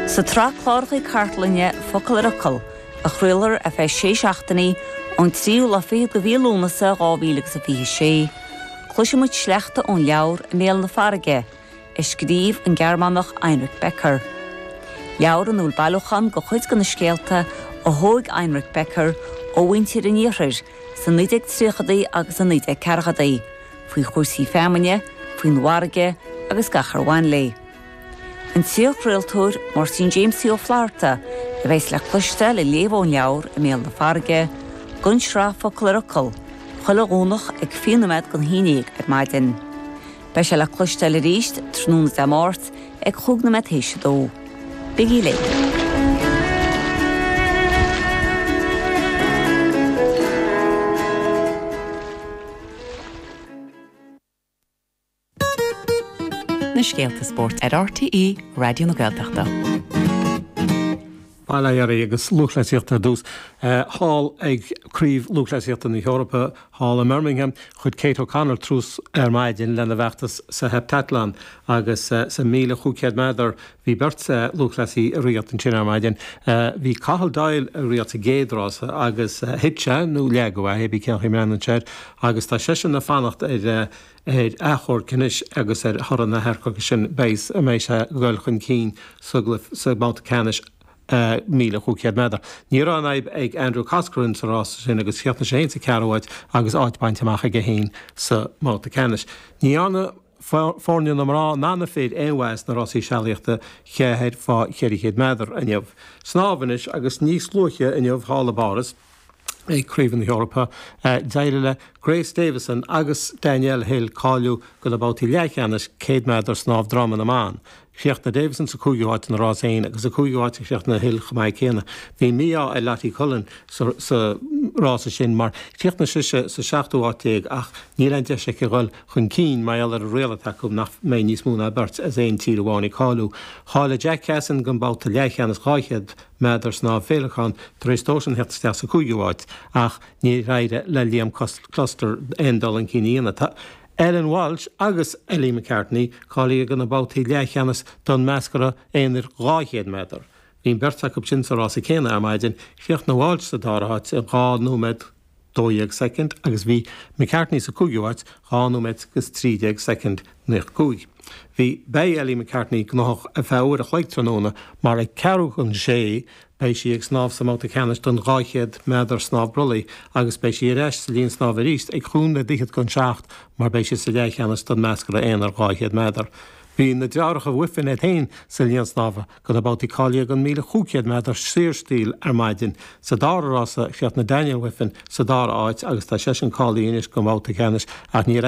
Sa tsraith cláracha cartlainne Focal ar Fhocal, a chraolfar ar feadh sé seachtainí, ón 3ú lá fichead de mhí Lúnasa 2026, cloisfimid sleachta ón leabhar I mBéal na Farraige, a scríobh an Gearmánach Heinrich Becker. Leabhar ina bhfuil bailiúchán de chuid de na scéalta a thóg Heinrich Becker ó mhuintir an Iarthair sna 1930idí agus sna 1940idí. faoi chúrsaí feamainne, faoin bhfarraige agus gach ar bhain léi. An t-iarchraoltóir Máirtín Jaimsie Ó Flaithearta a bheas le cloisteáil ag léamh ón leabhar I mBéal na Farraige, don tsraith Focal ar Fhocal, chuile Dhomhnach ag fiche nóiméad don haon déag ar maidin. Beidh sé le cloisteáil arís tráthnóna Dé Máirt ag chúig nóiméad tar éis a dó. Bigí linn! Na scéalta spóirt ar RTÉ Raidió na Gaeltachta. Bail ó Dhia oraibh agus lúthchleasaíocht ar dtús thall ag Craobh Lúthchleasaíochta na hEorpa thall i mBirmingham. Chuir Kate O'Connor tús ar maidin lena bhfeachtas sa heptathlon agus sa 1,500 méadar Bhí beirt lúthchleasaí ag rith ansin ar maidin. Bhí Cathal Doyle ag rith sa gcéad rása agus thit sé, nó leagadh é, pé ar bith cén chaoi a mbreathnaíonn tú air, agus tá seisean ag fanacht ar achomharc anois agus ar thoradh an achomhairc sin féachaint an mbeidh sé ag dul chun cinn sa mbabhta ceannais míle cúig chéad méadar. Ní raibh aon fhadhb ag Andrew Coscoran sa rása sin agus chríochnaigh sé fhéin sa ceathrú háit agus áit bainte amach aige fhéin sa mbabhta ceannais. Ní dhearna. foirne na mná ná na fir aon mhaith sna rásaí sealaíochta ceathair faoi cheithre chéad méadar inniu. Snámh anois agus níos luaithe inniu thall i bPáras ag Craobh na hEorpa, d'éirigh le Grace Davison agus Danielle Hill cáiliú do na babhtaí leathcheannais céad méadar snámh droma na mban. Chríochnaigh Davison sa 5ú háit ina rás féin agus sa 5ú háit a chríochnaigh Hill chomh maith céanna. Bhí mí-ádh ar Lottie Cullen sa rása sin mar chríochnaigh sise sa seachtú háit déag ach níl aon deis aici dhul chun cinn mar gheall ar an riail atá acu nach mbeidh níos mó ná beirt as aon tír amháin ag cáiliú. Cháiligh Jack Cassin don babhta leathcheannais 200 méadar sa bhféileacán tar éis dósan theacht isteach sa 5ú háit ach níor éirigh le Liam Custer aon dul chun cinn a dhéanamh. Ellen Walshe agus Ellie McCartney cáilithe do na babhtaí leathcheannais don mheascra aonair 200 méadar. Bhí an bheirt acu sin sa rása céanna ar maidin, chríochnaigh Walshe sa dara háit in 2 nóiméad 12 soicind agus bhí McCartney sa cúigiú háit 2 nóiméad agus 13 soicind náid 5. Bhí Beidh Ellie McCartney gnóthach ar feadh uair a chloig tráthnóna mar ag ceathrú chun a sé Beidh sí ag snámh sa mbabhta ceannais den 200 méadar snámh brollaigh agus beidh sí ar ais sa linn snámha arís ag chúig nóiméad fhichead don seacht mar beidh sí sa leathcheannais den meascra aonair 200 méadar. Bhí na deartháireacha Wiffen iad féin sa linn snámha do na babhtaí cáilithe don 1500 méadar saorstíl ar maidin. Sa dara rása chríochnaigh Daniel Wiffen sa dara áit agus tá seisean cáilithe anois don bhabhta ceannais ach níor